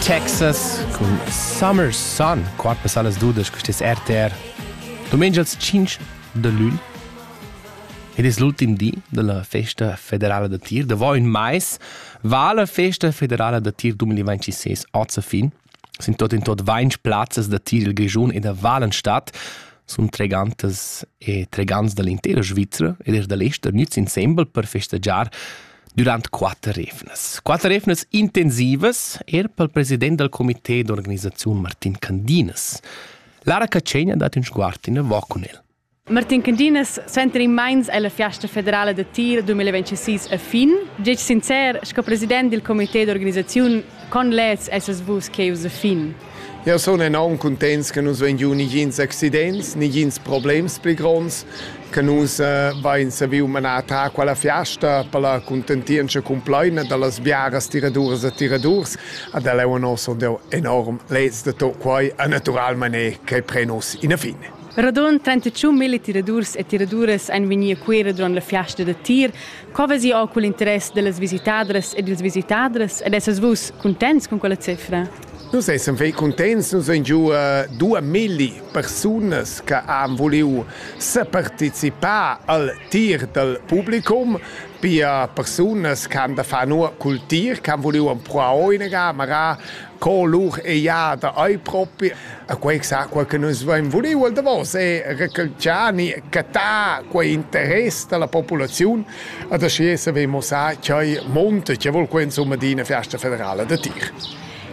Texas cun Summer Sun, quart passà las dudas con tes RTR. Domenica il 5 de lune. Ed è l'ultim di della festa federale da tir. Da voi in mais va la festa federale da tir 2026 a fin. Sin tuot in tuot vainch plazzas da tir il Grischun e da Valenstadt sun tregantas e tregants da l'intera Svizra ed eir da l'ester gnüts insembel per festegiar durant quatter evnas. Quatter evnas intensivas eir pel president dal comité d'organisaziun Martin Candinas. Lara Catschegna dat ün sguard inavo cun el. Martin Candinas suenter in meins ella fiasta federala da tir 2026 a fin. Gec sincer, sco president dil comité d'organisaziun, con leds essas vus cheus a fin? Eu sun enorm cuntents che nus vain giu nigins accidents, nigins problems pli gronds, che nus eh, vain saviu manar ta quella fiasta per la contentientscha complaina dallas biaras tiraduras e tiradurs ad el eu nos enorm leds da tot quai e naturalmain che pre nos ina fin. Radund 35 mille tiradurs e tiraduras ein vegni a Cuera duront la fiasta da tir. Co vesi jau cugl interess dellas visitadras ed ils visitadras ed essas vus cuntents cun quella cifra? Nus essan fei cuntents, nus ein giu dua milli persunas che han vuliu separticipar al tir dal publicum, pia persunas che han da far nua cul tir, che han vuliu empruar o inaga, magari co lur eiada ei propi a quei sacua che nus vein vuliu el davos e recalciani catar quei interess dalla populaziun ad aschi saver mussar ch'ei monte che vul quei insomma di una festa federala da tir.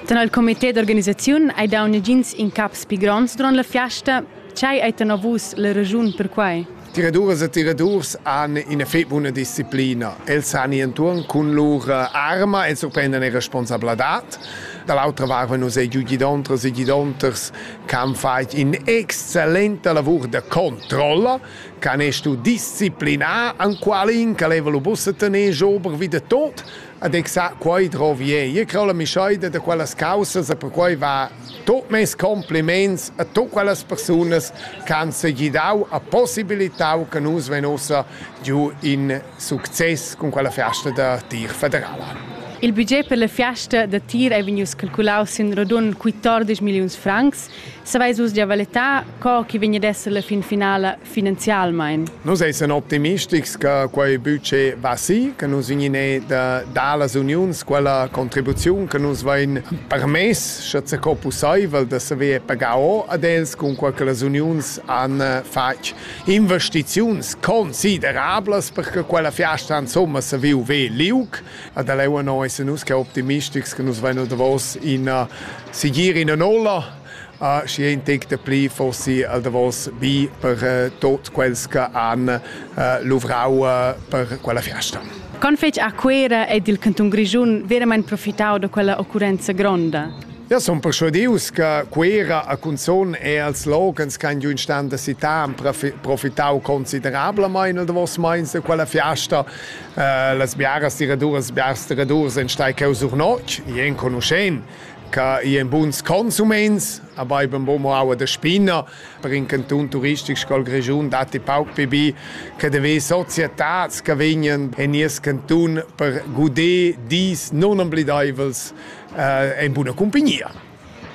Tenor il comité d'organisaziun hai dau negins incaps pli gronds duront la fiasta. Tgei ei tenor vus la raschun per quei? Tiraduras e tiradurs han ina fetg buna disciplina. Els han enturn cun lur arma e surprendan e responsabladad. Da l'autra vart vein nus giu gidontras e gidonters che han fatg in'excellenta lavur da controlla, che han stuu disciplinar enqualin che leva lu buca tener ober vi de tot, Ed exa quei drovi ei. Io creo la mischoida da quellas caussas e perquei va tut mes compliments a tutt quellas persunas che han segidau e possibilitau che nus vein ussa giu in success cun quella fiasta da tir federala. Il budget per la fiasta da tir ei vegnius calculaus sin radund 14 milliuns francs. Saveis vus gia valettar co che vegn ad esser la fin finala finanzialmein. Nus essan optimistics che quei buca va si, che nus vegnine da dallas uniuns quella contribuziun che nus vein permess, sche co pusseivel, da saver pagar o ad els cunquei che las uniuns han fatg investiziuns considerablas per che quella fiasta insomma se viu ve liug. Ad leu no essan nus che optimistics che nus vein davos in sigir in nolla Ah, schi ein tec dapli forsi al davos bi per eh, tot quels che han eh, luvrau eh, per quella fiasta. Con fetg a Cuera ed il canton Grischun veramente profitau da quella occurrenza gronda? Ja, son persuadius che Cuera a Cunzon e als logans che giun stan da città han profitau considerablement nel davos meins de quella fiasta. Uh, las biaras tiraduras, biars tiradurs en stai cheu sur notg, i enconuschen. che i en buns consuments, aber eben bo mo aua de spinner, per in canton turistic scol Grischun datti pauc pibi, che de ve societats che vegnen en nies canton per guder dis non oblidaivels eh, en buna compagnia.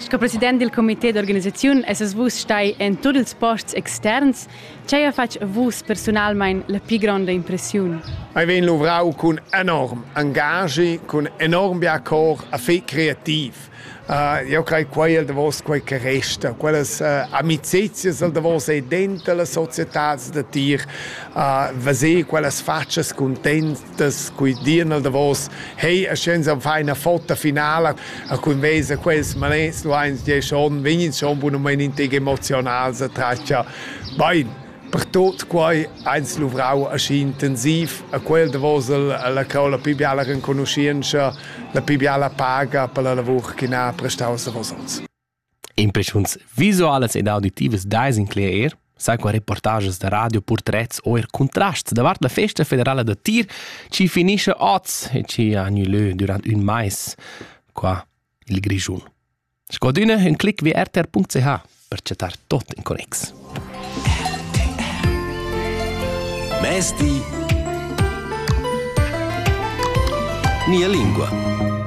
Sco president del comité d'organisaziun esses vus stai en tutti ils posts externs Tgei ha fatg a vus persunalmein la pli gronda impressiun? Ei vegn luvrau cun enorm engagi, cun enorm bia cor a fei creativ. Uh, io crei quei el davos quei che resta, quellas uh, amicizias el davos ei dentro la societad da tir, uh, veser quellas faccias content, das qui dian al davos hey a scienza fa una foto finale a cun vesa quels manets lu eins die schon vegnin schon bunament integ emotional sa traccia bein per tot quai eins luvrau aschi intensiv a quel davos la cau la pi biala renconuscienza la pi biala paga per la lavur che na prestau sa vos Impreschuns visualas ed auditivas dais incler eir, sai qua reportages da radio, purtrets o eir cuntrasts davart la festa federala da tir chi finischa oz e chi ha gnü lö dürant ün mais qua i'l Grischun. Scodüna ün clic vi rtr.ch per chattar tot in connex. Mezdi. Nia lingua.